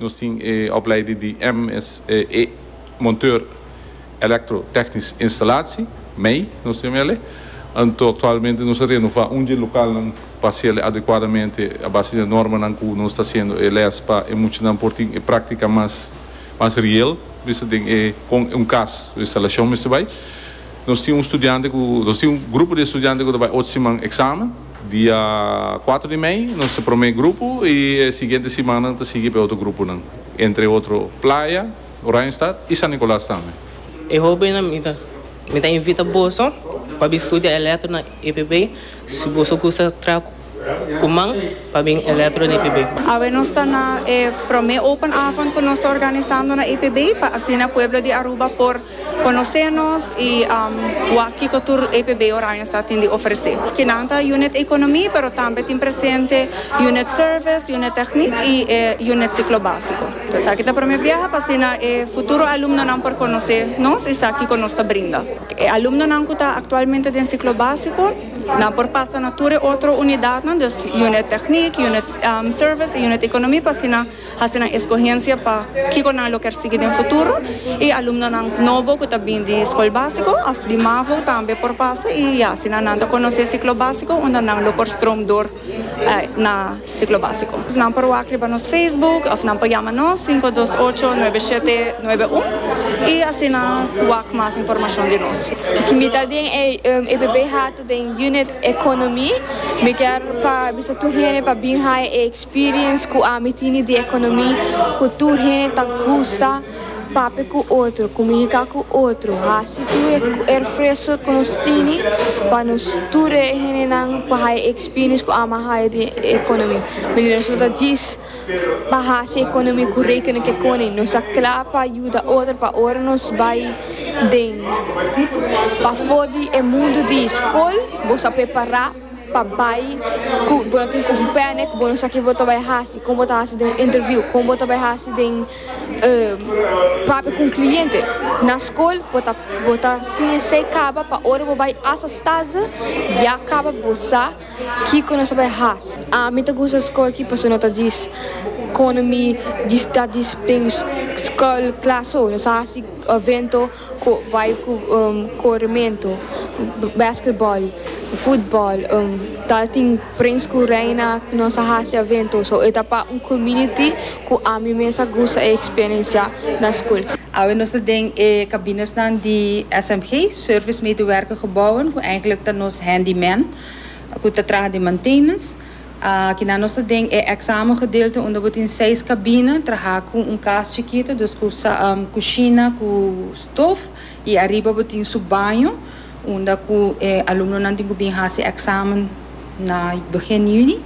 Nos tin e opleiding di MSE Monteur Elektro Technisch Installatie, mei, nos tin mei ale. Anto aktualmente nos a renová un di e lokalnan pa hasiel adekuadamente a base di e normanan ku nos ta hasiendo e lès pa e muchanan por tin e práktika mas mas riel, bisto den e kon un kas su instalashon mester bai. Nos tin un studiante cu, nos tin un grupo di estudiante cu ta bay ocho siman examen. Dia cuatro di mei nos ta prome grupo y e siguiente siman nan ta sigui pa e otro gruponan. Entre otro Playa, Oranjestad y San Nicolas tambe. E hobennan mi ta mi ta invita boso pa bin studia electro na EPB si boso gusta traha cu. ku man pa bin Eletro na IPB. Awe nos ta na e promé open avond ku nos ta organisando na IPB pa asina pueblo di Aruba por konosé nos i wak kiko tur IPB Oranjestad tin di ofresé. Kinan ta Unit Ekonomi pero tambe tin presente Unit Service, Unit Techniek i e Unit Siklo Básiko. Entonces aki ta promé biaha pa asina e futuro alumnonan por konosé nos i sa kiko nos ta brinda. E alumnonan ku ta aktualmente den Siklo Básiko. Nan por pasa na tur e otro unidatnan, dus Unit Techniek, Unit Service i Unit Economie pa asina hasi nan escogencia pa kico nan lo kier sigui den futuro. I alumnonan nobo cu ta bin di Scol Basico of di Mavo tambe por pasa i ya asina nan ta conoce e ciclo basico unda nan lo por stroom door. na siklo básiko. Nan por wak riba nos Facebook òf nan por yama nos sinku dos ocho nuebe shete nuebe un i asina wak mas informashon di nos. Ki mi ta den e bebe hatu den Unit Economy. Mi kier pa bisa tur hende pa bin haya e experience ku ami tini di economy ku tur hende ta gusta. Papia ku otro, kuminika ku otro, hasi tur e erfreso ku nos tini pa nos tur e henenan pa haya e ekspiriens ku ama haya den e ekonomi. Manera nos lo ta djis pa hasi ekonomi ku rekenen ke koni nos ta kla pa yuda otro pa ora nos bai den pafó di e mundu di skol bo sa prepará pa bai ku bo no tin ku un pène ku bo no sa ke bo ta bai hasi kon bo ta hasi den un interviu kon bo ta bai hasi den papia ku un kliente na skol bo ta bo ta sin esei kaba pa ora bo bai hasta stazio ya kaba bo sa kiko no ta bai hasa. Ami ta gusta skol aki pasobra no ta dis kono mi dis ta dis den skol klas so no sa hasi evento. Ku bai ku korementu, basketball, futbol, ta tin prins ku reina ku nos a hasi aventu. So e ta pa un komuniti ku ami mes a gusta e eksperensia na skol. Awe nos ta den e kabinesnan di SMG, Service Medewerker Gebouwen, ku eigentlik ta nos handyman ku ta traha den maintenance. Aki nan nos ta den e examen gedeelte unda bo tin seis cabine, traha cu un cas chikito, dus cu cushina cu stof y ariba bo tin su baño unda cu e alumnonan tin cu bin haci examen na begin juni.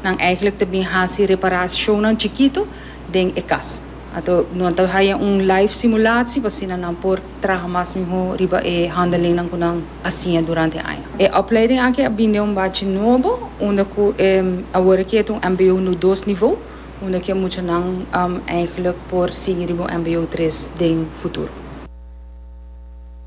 Nan eigenlijk ta bin haci reparacionnan chikito den e cas. Anto nan ta haya un live simulatsi pa asina nan por traha mas mihó riba e handelingnan ku nan a siña durante e aña. E opleiding aki a bin den un bachi nobo unda ku e awor aki e ta un mbo nu dos nivo unda ku e muchanan èigelik por sigui riba un mbo tres den futuro.